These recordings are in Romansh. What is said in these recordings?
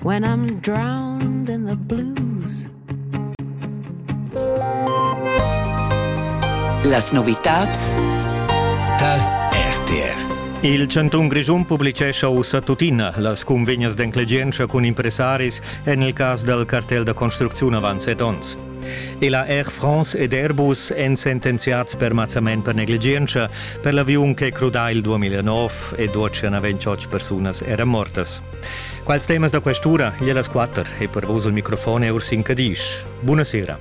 When I'm drowned in the blues. Las novitads da RTR. Il Chantun Grischun publicescha ussa tuttina las cunvegnas d'enclegientscha cun impressaris en il cas dal cartel da construcziun avant set onns. E la Air France ed Airbus èn sentenziads per mazzament per negligientscha per l'aviun che crudà il 2009 e 228 persunas eran mortas. Quals temas da questura? Gli las quatter e per vos il microfon è Ursin Cadisch. Buonasera.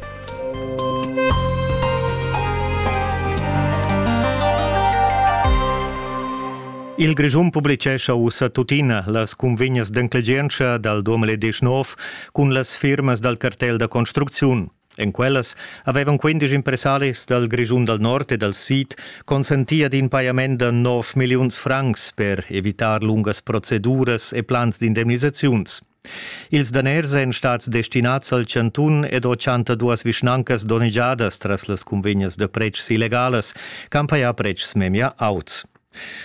Il Grischun publicescha ussa tuttina las cunvegnas d'enclegientscha dal 2019 cun las firmas dal cartel da construcziun. En quellas havevan quindisch impressaris dal Grischun dal Nord e dal Sid consenti ad in pajament da nov milliuns francs per evitar lungas proceduras e plans d'indemnisaziuns. Ils daners èn stads destinads al chantun ed ho 102 vischnancas donnegiadas tras las cunvegnas da pretschs illegalas, campaia pretschs memia auts.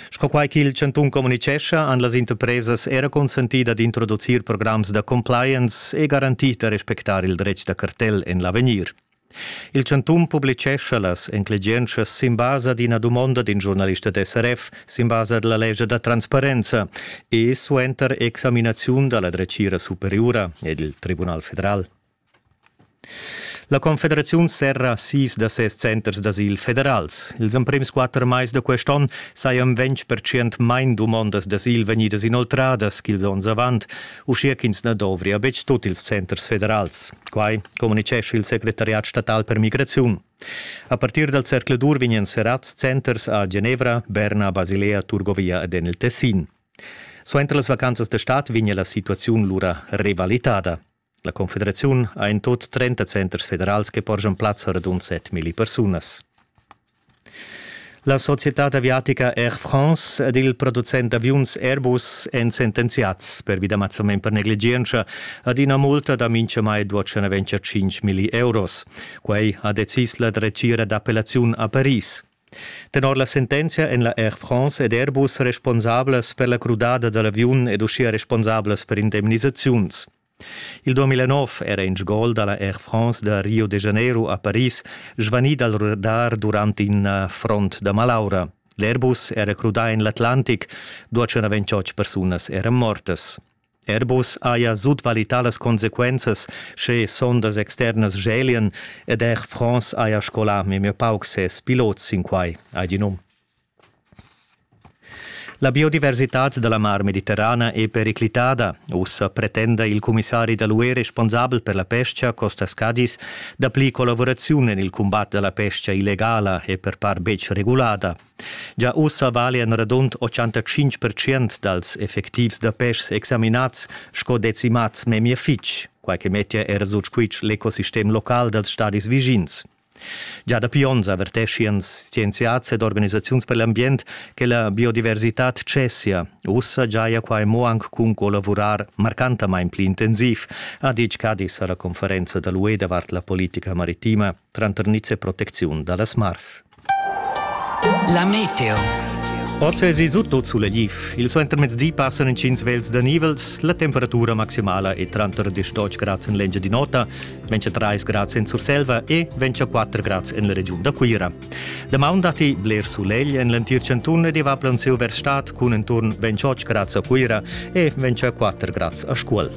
Sco quai ch'il chantun communitgescha, han las interpresas era consentì dad introducir programs da compliance e garantì da respectar il dretg da cartel en l'avegnir. Il chantun publitgescha las enclegientschas sin basa d'ina dumonda d'in giurnalist da SRF sin basa da la lescha da transparenza e suenter examinaziun da la dretgira superiura ed il Tribunal federal. La confederaziun serra sis da ses centers d'asil federals. Ils emprims quatter mais da quest onn sajan 20% main dumondas d'asil vegnidas inoltradas ch'ils onns avant, uschia ch'ins na dovria betg tut ils centers federals. Quai communitgescha il secretariat statal per migraziun. A partir dal zercladur vegnan serrads centers a Genevra, Berna, Basilea, Turgovia ed en il Tessin. Suenter las vacanzas da stad vegnia la situaziun lura revalitada. La confederaziun ha in tot 30 centers federals che porschan plazza a radund 7.000 persunas. La societad aviatica Air France ed il producent d'aviuns Airbus èn sentenziads pervida mazzament per negligientscha ad ina multa da mintgamai 225 milli euros. Quai ha decis la dretgira d'appellaziun a Paris. Tenor la sentenzia èn la Air France ed Airbus responsablas per la crudada da l'aviun ed uschia responsablas per indemnisaziuns. Il 2009 era in sgol da la Air France da Rio de Janeiro a Paris svanì dal radar durant in front da malaura. L'Airbus era crudà en l'Atlantic, 228 persunas eran mortas. Airbus haja sutvaluità las consequenzas sche sondas externas schelian ed er France haja scolà memia pauc ses pilots sin quai, ha di num. La biodiversitad da la Mar Mediterrana è periclitada. Ussa pretenda il cumissari da l'UE responsabel per la pestga, Costas Cadiz, dapli collavuraziun en il cumbat da la pestga illegala e per part betg regulada, Gia ussa vali en radund 85 percent dals effectivs da peschs examinats sco decimats memia fitg, quai che mettia era sut squitsch l'ecosistem local dals stadis vischins. Già dapi onns averteschian scienziads ed organisaziuns per l'ambient che la biodiversitad cessia. Ussa giaja quai mo anc cun collavurar marcantamain pli intensiv, ha ditg Cadi a la conferenza da l'UE davart la politica maritima tranter niz e protecziun da las mars. La meteo. Oz vesi sut tot sulegliv. Il suentermezdi passan intgins vels da nivels. La temperatura maximala è tranter 18 grads en l'Engiadin'Ota, 23 grads en Surselva e 24 grads en la regiun da Cuira. Damaun datti bler sulegl en l'entir chantun ed va plansiu vers stad cun enturn 28 grads a Cuira e 24 grads a Scuol.